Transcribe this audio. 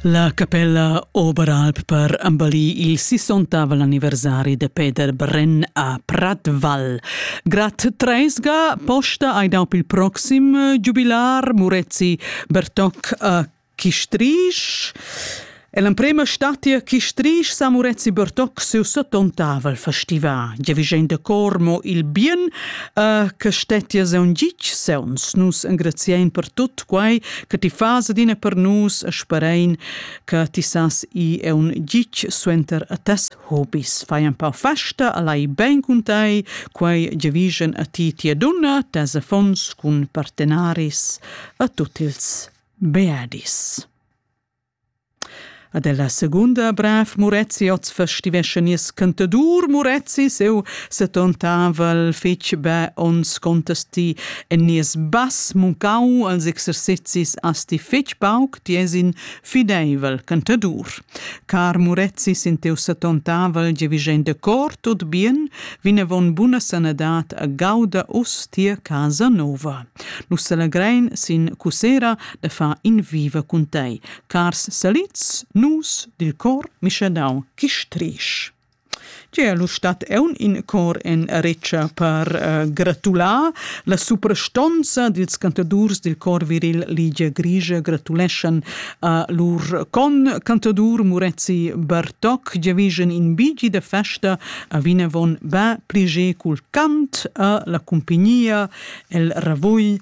La capella Oberalp per ambali il 60 anniversari de Peter Brenn a Pratval. Grat Treisga posta ai dau il proxim giubilar Murezi Bertoc a Chistrisch. È l'emprema statia chi strisch sa Murezi Bertoc siu settontavel festival. Giavigem da cor mo il bien uh, che stettia seun gitg seuns. Nus engraziein per tut quai che ti fas adina per nus e sperein che ti sas i è un gitg suenter a tes hobis. Fai un pau festa, alai ben cun tai, quai Giavigem a ti tia dunna, tes affons cun partenaris a tutti ils beadis. Ad ella segunda brav Murezi oz festivescha nies cantadur Murezi seu setontavel fetg be onns contesti en nies bass muncau als exercezis asti fetg pauc ties in fideivel cantadur. Car Murezi sin teu setontavel giavischein de cor tot bien, vinavon buna sanadad a gauda us tia casa nova. Nus selegrein sin cusera e fa in viva cun tei. Cars salids, nus dil cor mischadau chistrisch. Tier lu stat eun in cor en retscha per uh, gratular la suprastonza dils cantadurs dil cor viril Ligia Grigia gratuleschan a lur con cantadur Murezi Bartok giavigen in bigi da festa a vinavon ba pliger cul cant a la cumpignia el ravugl